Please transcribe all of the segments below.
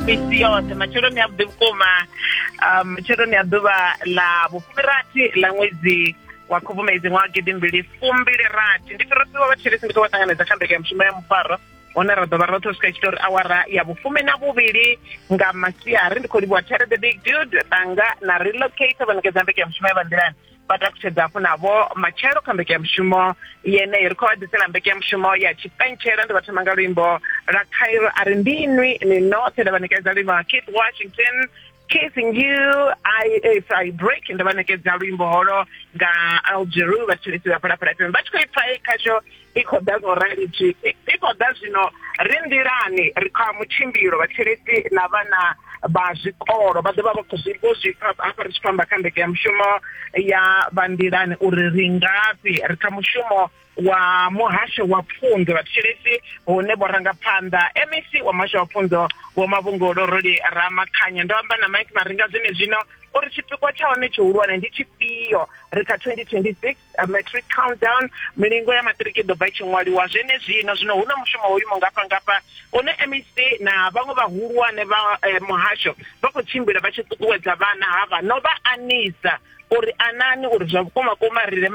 misi yoṱhe matsheloni avhuḓi vhukuma um, matsheloni a ḓuvha ḽa vhufumirathi ḽa ṅwedzi wa khubvumedzi ṅwaha gidi mbili fumbili rathi ndi fhirosiwa vhatshelesi ndi khou vha ṱanganedza kha mbeke ya mushumo ya mufaro hone ra ḓovha roṱhe u swika itshi tori awara ya vhufumi na vhuvhili nga masiari ndi khou livhuwa tere the big dude ṱanga na relocate vha ṋekedza mbeke ya mushumo ya vhanḓilani vha takutshedza hafhu navho matshelo kha mbekanyamushumo yeneyo ri khou vha ḓisela mbekanyamushumo ya tshipentshela ndi vha thoma nga luimbo lwa khairo a ri ndi inwi ni noṱhe nda vha ṋekedza luimbo lwa keith washington kissing you i if i break nda vha ṋekedza luimbo holo nga algeru vhathetshelesi vha phalaphala fm vha tshi khou ipfa khasho i khou ḓa zwo rali zwi i khou ḓa zwino ri nḓilani ri kha mutshimbilo vhatsheleti na vhana vha zwikolo vha ḓovha vha khou zwi vho zwi pfa hafha ri tshi khou amba kha ndeke ya mushumo ya vha nḓilani uri ri ngafhi ri kha mushumo wa muhasho wa pfunzo vhatsheleti hune vho ranga phanḓa MEC wa muhasho wa pfunzo vho mavhungolo roli ramakhanya ndo amba na Mike Maringa zwine zwino uri tshipikwa tsha hone tshihulwane ndi tshifhio ri kha 2026 A matric countdown milingo ya maṱiriki i ḓo bva i tshi ṅwaliwa zwenezwino zwino hu na mushumo wo imaho ngafha ngafha une mec na vhaṅwe vhahulwane vha eh, muhasho vha khou tshimbila vha tshi ṱuṱuwedza vhana havha no vha anisa uri anani uri zwa vhukuma kuma ri re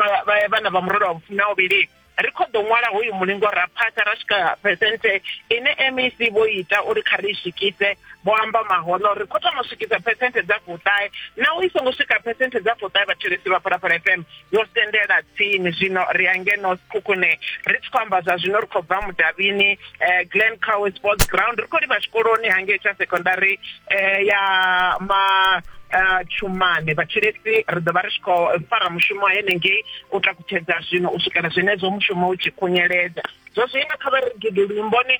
vhana vha murole wa vhufumi na uvhili ri khou ḓo ṅwala hoyu mulingo ra phasa ra swika phesenthe ine mec vho ita uri kha ri i swikise vho amba mahoḽa uri kho thoma u swikisa phesenthe dza fuṱahe naho i songo swika phesenthe dza fuṱahe vhathelesi vha phalaphala fm yo sendela tsini zwino ri angeno sikhukhune ri tshi khou amba zwa zwino ri khou bva mudavhini eh, glen cow sports ground ri khou livha tshikoloni hangei tsha secondary eh, ya ma eh, tshumane vhathelesi ri ḓo vha ri tshi khou fara mushumo henengei u takutshedza zwino u swikela zwenezwo mushumo u tshi khunyeledza zwa zwino kha vha ri gidi luimboni